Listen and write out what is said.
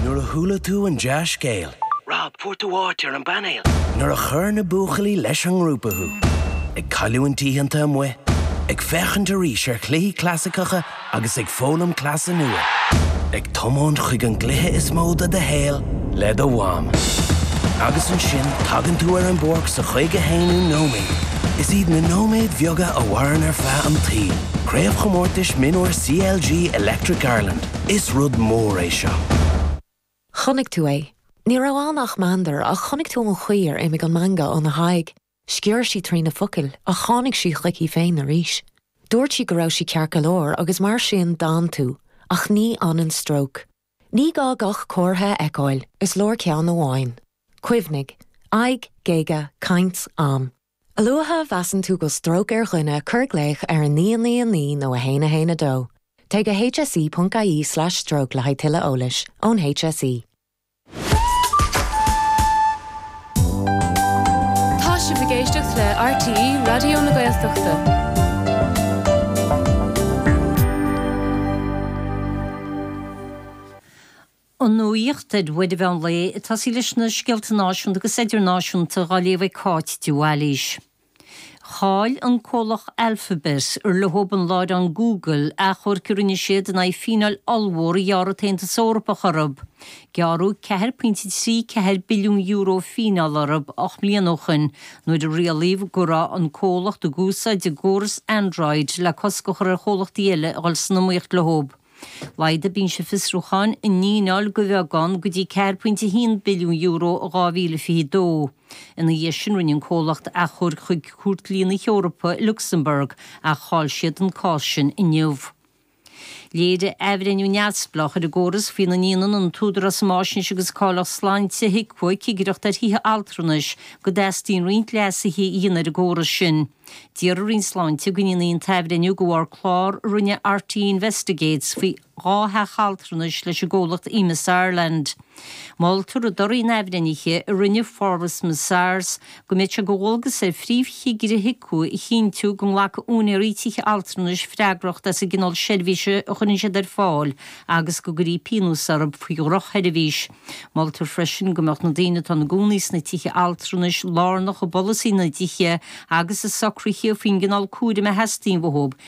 Nuair a chuala tú an dea-scéal. Rob, fuair tú áit ar an bpainéal! Nuair a chuir na buachaillí leis an ngrúpa thú. Ag cailliúint oícheanta amuigh, ag féachaint arís ar chluichí clasaiceacha agus ag foghlaim cleasa nua. Ag tiomáint chuig an gcluiche is mó de do shaol le do mham. Agus ansin tagann tú ar an bpáirc sa chaoga haonú nóiméad. Is iad na nóiméid bheaga a mhaireann ar feadh an tsaoil. Craobhchomórtais Mionúir CLG Electric Ireland, Is rud mór é seo. Chonaic tú é. Ní raibh ann ach meandar, ach chonaic tú an chaoi ar imigh an meangadh óna haghaidh. Sciorr sí trí na focail, ach tháinig sí chuici féin arís. Dúirt sí go raibh sí ceart go leor, agus mar sin d'fhan tú. Ach ní fhanann stróc. Ní gá gach comhartha a fheiceáil, is leor ceann amháin. Cuimhnigh. Aghaidh, géaga, caint, am. A luaithe a mheasann tú go bhfuil stróc ar dhuine cuir glaoch ar 999 nó 112. Téigh go hse.ie/stroke le haghaidh tuilleadh eolais ón HSE. Tá sibh ag éisteacht le RTÉ Raidió na Gaeltachta. An nuaíocht ar uair an mheán lae ag tosaí leis na scéalta náisiúnta agus idirnáisiúnta dhá léamh ag Cáit de Bhailís. Chaill an comhlacht Alphabet, ar leo an láithreán Google, achomhairc a rinne siad in aghaidh fíneáil ollmhór a ghearr an tAontas Eorpach orthu. Gearradh ceathair pointe trí ceathair billiún euro fíneáil orthu ocht mbliana ó shin nuair a rialaíodh go raibh an comhlacht ag úsáid a gcóras Android le cosc a chur ar chomhlachtaí eile a dhul san iomaíocht leo. Laghdaigh Binse Fiosrúcháin an fhíneáil de bheagán, go dtí €4.1 billiún in 2022. Ina dhiaidh sin, rinne an comhlacht achomharc chuig Cúirt Dlí na hEorpa i Lucsamburg, ach chaill siad an cás sin inniu. Léirigh athbhreithniú neamhspleách ar an gcóras faoina ndéanann an tÚdarás um Fhaisnéis agus Cáilíocht Sláinte, HIQA, cigireacht ar thithe altranais, go dteastaíonn roinnt leasuithe a dhéanamh ar an gcóras sin. D'iarr an Roinn Sláinte go ndéanfaí an t-athbhreithniú de bharr clár a rinne RTÉ Investigates faoi dhá theach altranais leis an gcomhlacht Emeis Ireland. Moltar i dtoradh an athbhreithnithe a rinne Forvis Mazars go mbeidh sé de dhualgas ar Phríomhchigire HIQA a chinntiú go nglacfaidh úinéaraí tithe altranais freagracht as an gcineál seirbhíse a chuireann siad ar fáil agus go gcuirfí pionós orthu faoi dhrochsheirbhís. Moltar freisin go mbeadh na daoine atá ina gcónaí sna tithe altranais lárnach i bpolasaí na dtithe agus i socruithe faoin gcineál cúraim a theastaíonn uathu,